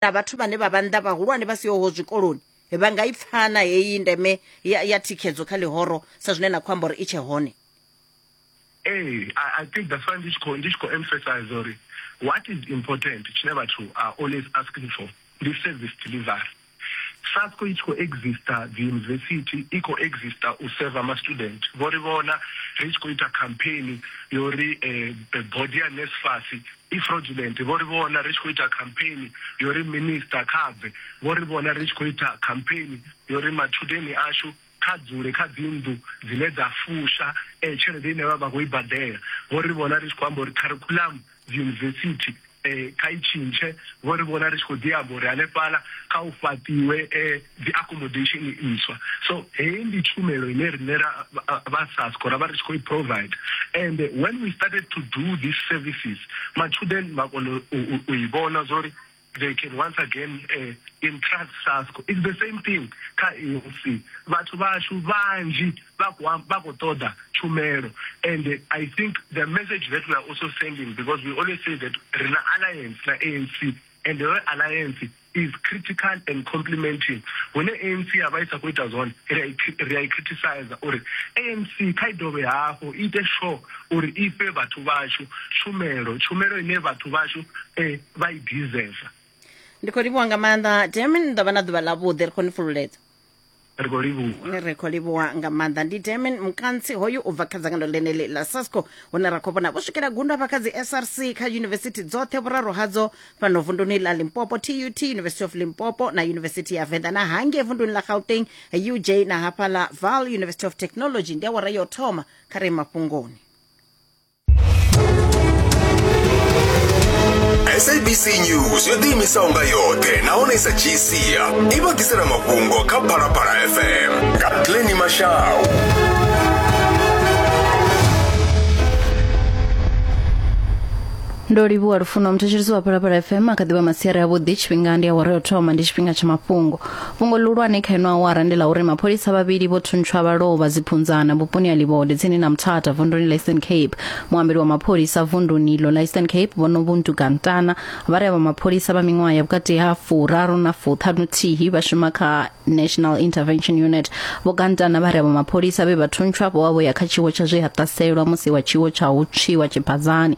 na vhathu vhane vha vha nnḓa vhahulwane vha sihoho zwikoloni vha nga i pfana heyi ndeme ya, ya thikhedzo kha ḽihoro sa zwine na khou amba uri i tshe hone Hey, I, I think that's why this call, this call emphasize or what is important, Chile Batu are always asking for the service delivery. SASCO it co exista, the university it co exista, u serve ama student. Vori vona, rich co ita campaign, yori eh, body and NSFAS, I fraudulent, vho ri vhona ri tshi khou ita khampheini yo ri Minisiṱa kha bve, vho ri vhona ri tshi khou ita khampheini yo ri matshudeni ashu kha dzule kha dzinnḓu dzine dza fusha tshelede ine vha vha khou i badela, vho ri vhona ri tshi khou amba uri kharikhuḽamu dziyunivesithi kha i tshintshe, vho ri vhona ri tshi khou ḓi amba uri hanefhaḽa kha hu fhaṱiwe dzi accommodation ntswa so heyi ndi tshumelo ine rine ra vha sasco ra vha ri tshi khou i provide and when we started to do these services matshudeni vha kona u i vhona zwa uri they can once again uh, entrust sasco it's the same thing kha anc vhathu vashu vanzhi vha khou ṱoḓa tshumelo and i think the message that we are also sending because we always say that rina alliance na anc and your alliance is critical and complementing hune ANC ya vha i sa khou ita zwone ri a i criticizer uri ANC kha i dovhe hafhu i ite sure uri i fhe vhathu vhashu tshumelo tshumelo ine vhathu vhashu eh, vha i deserve ndi khou livhuwa nga maanḓa demin ndo vha na ḓuvha ḽavhuḓi ri khou ni fhululedza ri khou livhuwa ri khou livhuwa nga maanḓa ndi demen mukantsi hoyu u bva kha dzangano ḽeneḽi ḽa sasco hune ra khou vhona vho swikela gundo hafha kha dzi src kha yunivesithi dzoṱhe vhuraru hadzo fhano vunduni ḽa limpopo tut university of limpopo na yunivesithi ya venḓa na hangei vunduni ḽa gauteng uj na hafhaḽa val university of technology ndi awara yo thoma kha re mafhungoni sabc news yo ḓiimisaho nga yoṱhe nahone sa gcia i vha ḓisela mafhungo kha phalaphala fm nga pleni mashau ndo livhuwa lufuno mthetshelisi wa phalaphala fm a kha ḓivha masiari avhuḓi tshifhinga ndi awara yo thoma ndi tshifhinga tsha mafhungo fhungo ḽihulwane kha ino awara ndi ḽa uri mapholisa vhavhili vho thuntshwa vha lovha dziphunzana vhuponi ha livhode tsini na muthatha vunduni ḽa eastern cape muambeli wa mapholisa vunduni iḽo ḽa eastern cape vhonovuntu gantana vha ri avha mapholisa vha miṅwaha ya vhukati ha furaru na fuṱhanuthihi vha shuma kha national intervention unit vho gantana vha ri avha mapholisa vhe vha thuntshwa vho vha vho ya kha tshiwo tsha zwe ha ṱaselwa musi wa tshiwo tsha u tswiwa tshibazani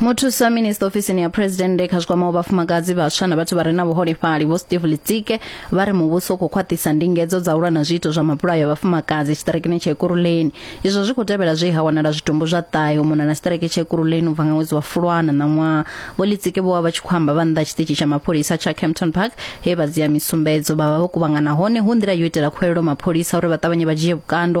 muthusa minista ofisini ya phuresidennde kha zwikwamaho vhafumakadzi vhaswa na vhathu vha re na vhuholefhali vho steve litsike vha ri muvhuso u khou khwaṱhisa ndingedzo dza u lwa na zwiito zwa mabulayo a vhafumakadzi tshiṱirekini tsha ekuruleni izwo zwi khou tevhela zwe ha wanala zwitumbu zwa ṱahe u mona na tshiṱireke tsha ekuruleni u bva nga ṅwedzi wa fulwana ṋaṅwaha vho litsike vho vha vha tshi khou amba vha nnḓa tshiṱitshi tsha mapholisa tsha campton park he vha dzia misumbedzo vha vha vho kuvhangana hone hu nḓila yo itela khuwelelo mapholisa uri vha ṱavhanye vha dzhie vhukando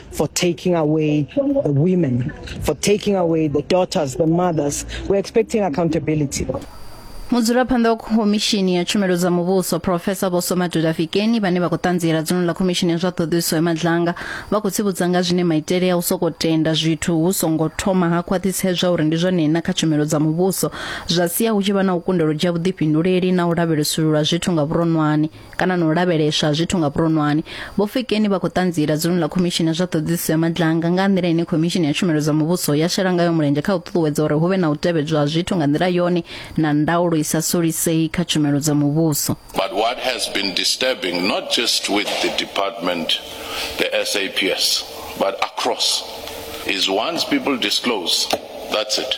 for taking away the women, for taking away the daughters, the mothers. We're expecting accountability. mudzulaphanḓa wa khomishini ya tshumelo dza muvhuso profesa vho somaduda fikeni vhane vha khou ṱanziela dzino ḽa khomishini ya zwa ṱhoḓisiso ya madlanga vha khou tsivhudza nga zwine maitele ya u soko tenda zwithu hu songo thoma ha khwaṱhisedzwa uri ndi zwone na kha tshumelo dza muvhuso zwa sia hu tshi vha na u kundelwa dzhia vhuḓifhinduleli na u lavhelesulula zwithu nga vhuronwane kana na u lavheleswa ha zwithu nga vhuronwane vho fikeni vha khou ṱanziela dzuluni ḽa khomishini ya zwa ṱhoḓisiso ya madlanga nga nḓila ine khomishini ya tshumelo dza muvhuso ya shela ngayo mulenzhe kha u ṱuṱuwedza uri hu vhe na u tevhedzwa ha zwithu nga nḓila yone na ndaulo i sa solisei kha tshumelo dza muvhuso But what has been disturbing, not just with the department, the SAPS, but across, is once people disclose, that's it.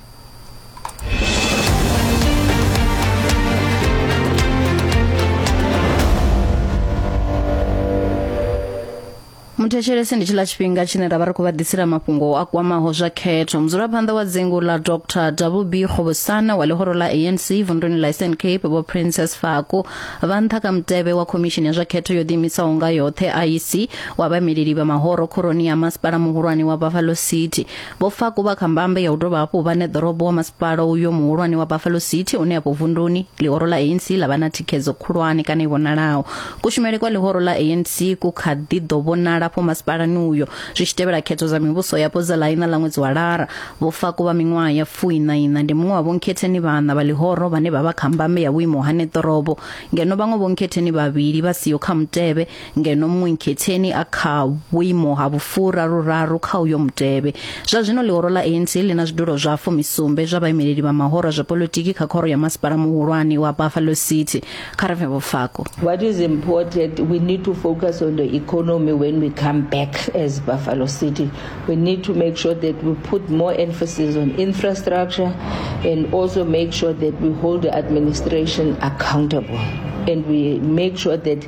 muthetshelese ndi tshiḽa tshifhinga tshine ra vha ri khou vha ḓisela mafhungo a kwamaho zwa khetho mudzulaphanḓa wa dzingu ḽa dr wb kgobosana wa ḽihoro ḽa anc vunḓuni ḽa eastern cape vho princess fako vha nṱha kha mutevhe wa khomishini ya zwa khetho yo ḓiimisaho nga yoṱhe iec wa vhameleli vha mahoro khoroni ya masipala muhulwane wa buffalo city Vho Faku vha kha mbambe ya u dovha hafhu vha ṋeḓorobo wa masipala uyo muhulwane wa Buffalo City une afho vunduni ḽihoro ḽa ANC ḽa vha na thikhedzo khulwane kana i vhonalaho. Kushumele kwa ḽihoro ḽa ANC ku kha ḓi ḓo vhonala afho masipalani uyo zwi tshi tevhela khetho dza mivhuso yapo dza ḽa iṋa ḽa ṅwedzi wa Lara. Vho Faku vha miṅwaha ya fuiṋa iṋa ndi muṅwe wa vhonkhetheni vhaṋa vha ḽihoro vhane vha vha kha mbambe ya vhuimo ha ṋeḓorobo ngeno vhaṅwe vhonkhetheni vhavhili vha siho kha mutevhe ngeno muṅwe nkhetheni a kha vhuimo ha vhufura ruraru kha uyo mutevhe zwa zwino ḽihoro ḽa ANC ḽi na zwidulo zwa fumisumbe zwa vhaimeleli vha mahoro zwa politiki kha khoro ya masipala muhulwane wa Buffalo City kha re vhofako What is important we need to focus on the economy when we come back as Buffalo City we need to make sure that we put more emphasis on infrastructure and also make sure that we hold the administration accountable and we make sure that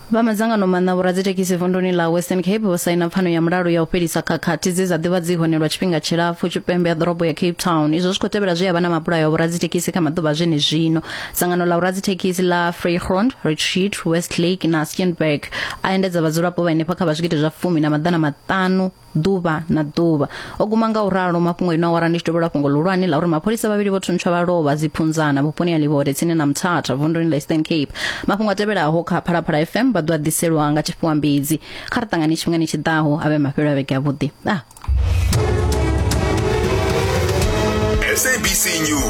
vha madzangano maṋa vhoradzithekhisi vunduni ḽa western cape vho saina pfano ya mulalo ya u fhelisa khakhathi dze dza ḓivha dzi hone lwa tshifhinga tshilapfu tshipembe ya ḓorobo ya cape town izwo zwi khou tevhela zwi ya vha na mabulayo a vhoradzithekhisi kha maḓuvha zwene zwino dzangano ḽa vhoradzithekhisi ḽa freegrond richard westlake na steenberg a endedza vhadzulapo vha henefha kha vha zwigidi zwa fumi na maḓana maṱanu ḓuvha na ḓuvha o guma nga u ralo mafhungo ino awara ndi tshi dovhela fhungo luhulwane la uri mapholisa vhavhili vho thuntsha vha lovha dziphunzana vhuponi ha livhode tsini na mthatha vunduni la eastern cape mafhungo a tevhelaho kha phalaphala fm vha ḓo a ḓiselwa nga tshifhiwa mbidzi kha ri ṱangane tshifhingani tshi ḓaho a vhe mafhelo a vhege avhuḓi ah. sabc news